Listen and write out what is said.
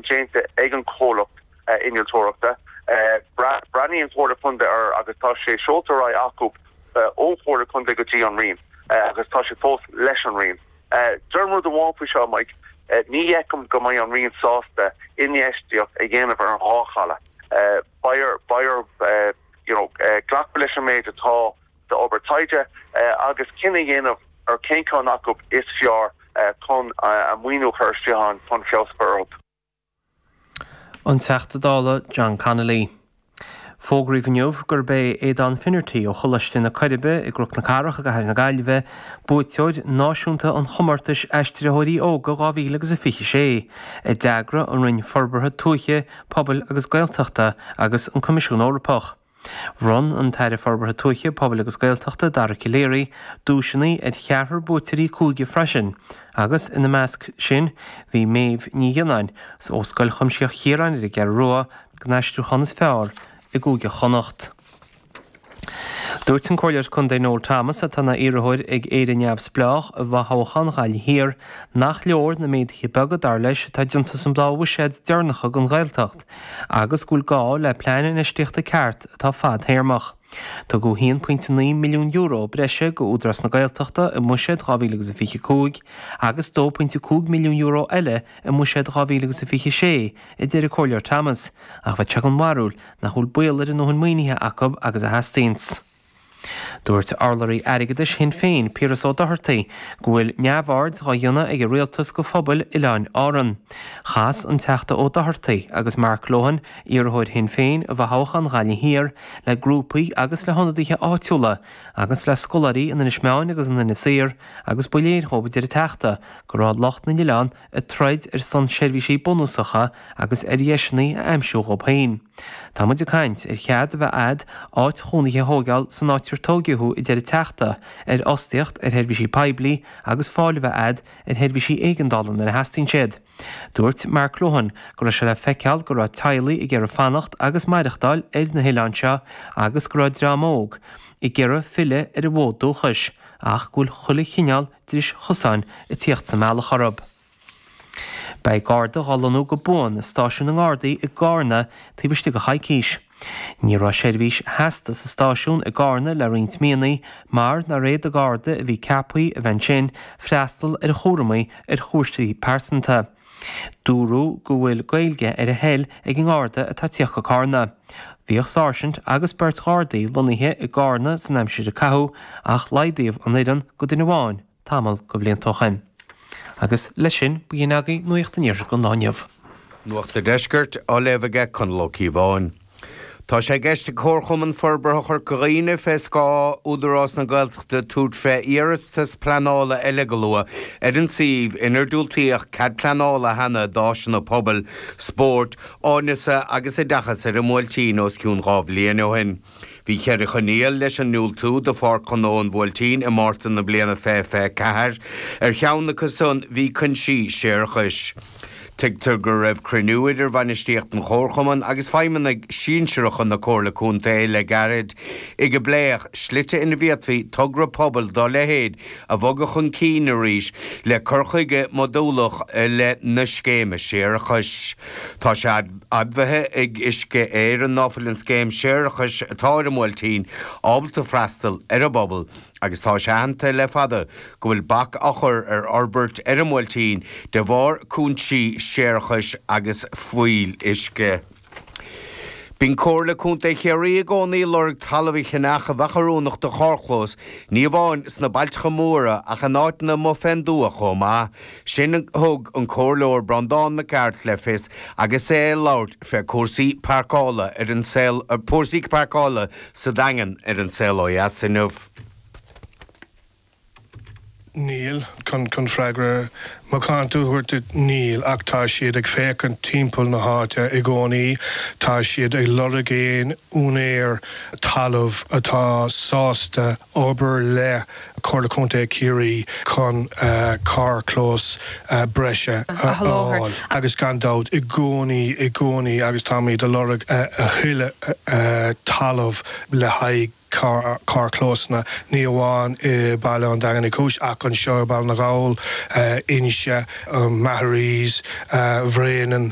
déanta ag an chomhlacht innealtóireachta. Breathnaíonn an Chomhairle Chontae air agus tá sé seolta ar aghaidh acu ón Chomhairle Chontae go dtí an Roinn agus tá sé fós leis an Roinn. Deirim rud amháin faoi seo, Mike, ní fheicim go mbeidh an Roinn sásta infheistíocht a dhéanamh ar an dhá chaladh. Beidh orthu glacadh leis an méid atá. d'obair taighde agus cinneadh a dhéanamh ar chén ceann acu is fearr chun a maoiniú a chur isteach ann chun feabhas a chur orthu. An Teachta Dála John Connolly. Fógraíodh inniu gurb é Aodán Finnerty ó Choláiste na Coiribe i gCnoc na Cathrach i gCathair na Gaillimhe buaiteoir náisiúnta an chomórtais Aistritheoirí Óga 2026 a d'eagraigh an Roinn Forbartha Tuaithe, Pobail agus Gaeltachta agus an Coimisiún Eorpach. Bhronn an tAire Forbartha Tuaithe, Pobail agus Gaeltachta, Dara Calleary, duaiseanna ar cheathrar buaiteoirí cúige freisin agus ina measc sin bhí Méabh Ní Ghionnáin ó Scoil Chuimsitheach Chiaráin ar an gCeathrú Rua don aistriúchán is fearr i gCúige Chonnacht. Dúirt an Comhairleoir Contae Noel Thomas, atá ina iarrthóir ag Éire Neamhspleách i bhfothoghchán Ghaillimh Thiar, nach leor na méaduithe beaga, dar leis, atá déanta san dá bhuiséad deireanacha don Ghaeltacht. agus go bhfuil gá le plean infheistíochta ceart atá fadthéarmach. Tugadh €1.9 milliún breise go Údarás na Gaeltachta i mBuiséad 2025 agus €2.5 milliún eile i mBuiséad 2026, a deir an Comhairleoir Thomas, ach bheadh sé den bharúil nach bhfuil baol ar a ndóthain maoinithe acu agus a theastaíonns. Dúirt urlabhraí airgeadais Shinn Féin, Piaras Ó Dochartaigh, go bhfuil neamhaird á dhéanamh ag an rialtas de phobail Oileáin Árann. Chas an Teachta Ó Dochartaigh agus Mark Lohan, iarrthóir Shinn Féin i bhfothoghchán Ghaillimh Thiar, le grúpaí agus le hionadaithe áitiúla agus le scoláirí in Inis Meáin agus in Inis Oírr agus ba léir dhóibh, a deir an Teachta, go raibh lucht na n-oileán ag troid ar son seirbhísí bunúsacha agus ar dheiseanna a aimsiú dhóibh féin. Tá muid ag caint ar chead a bheith a'd áit chónaithe a thóigeáil san áit ar tóigeadh thú a deir an Teachta, ar fhostaíocht ar sheirbhísí poiblí agus fáil a bheith a'd ar sheirbhísí éigeandála nuair a theastaíonn siad. Dúirt Mark Lohan go raibh sé le feiceáil go raibh teaghlaigh ag iarraidh fanacht agus maireachtáil ar na hoileáin seo agus go raibh dream óg ag iarraidh filleadh ar a bhfód dúchais ach go bhfuil chuile chineál dris chosáin ag tíocht sa mbealach orthu. Beidh garda dhá lonnú go buan i stáisiún na nGardaí i gCarna taobh istigh de choicís. Ní raibh seirbhís sheasta sa stáisiún i gCarna le roinnt míonnaí mar nár fhéad an garda a bhí ceaptha a bheith ansin freastal ar chúramaí ar chúiseanna pearsanta. Dúradh go bhfuil Gaeilge ar a thoil ag an nGarda atá ag tíocht go Cárna. Bhíodh sáirsint agus beirt Ghardaí lonnaithe i gCárna san aimsir a caitheadh ach laghdaíodh an fhoireann go duine amháin tamall de bhlianta ó shin. Agus leis sin ba shin agaibh Nuacht an Iarthair don lá inniu. Nuacht an Deiscirt á léamh aige Conall Ó Cíobháin. Tá sé i gceist ag Comharchumann Forbartha Chorca Dhuibhne, fé scáth Údarás na Gaeltachta, tabhairt fé iarratas pleanála eile go luath ar an suíomh inar diúltaíodh cead pleanála cheana d'áiseanna pobail, spóirt, áineasa agus oideachas ar an mBuailtín os cionn dhá bhliain ó shin. Bhí ceithre choinníoll leis an ndiúltú do Pháirc Ghnó an Bhuailtín i Márta na bliana 2024, ar cheann acu san bhí cúinsí séarachais. Tuigtear go raibh cruinniú idir bhainistíocht an Chomharchumainn agus feidhmeannaigh sinsearacha na Comhairle Contae le gairid ag a bpléadh slite ina bhféadfaí togra pobail dá leithéid a bhogadh chun cinn arís le cur chuige modúlach i leith na scéime séarachais. Tá sé admhaithe ag Uisce Éireann ná fuil an scéim séarachais atá ar an mBuailtín ábalta freastal ar an bpobal, Agus tá sé aitheanta le fada go bhfuil bac á chur ar fhorbairt ar an mBuailtín de bharr cúinsí séarachais agus fuíolluisce. Bíonn Comhairle Contae Chiarraí i gcónaí ag lorg talaimh a cheannach a bheadh oiriúnach do charrchlós, ní amháin sna bailteacha móra ach in áiteanna amuigh fén dtuath chomh maith. Sin a thug an Comhairleoir Breandán Mac Gearailt le fios agus é ag labhairt fé chúrsaí pairceála ar An Saol. sa Daingean ar an Saol Ó Dheas inniu. Níl, chun freagra macánta a thabhairt duit, níl, ach tá siad ag féachaint timpeall na háite i gcónaí, tá siad ag lorg aon úinéir talaimh atá sásta obair le Comhairle Contae Chiarraí chun carrchlós breise a fháil agus gan dabht i gcónaí, i gcónaí agus táimid ag lorg a thuilleadh talaimh le haghaidh carrchlósanna, ní amháin i Baile an Daingin Uí Chúis ach anseo i Baile na nGall, Inse, Maharees, Bréanainn.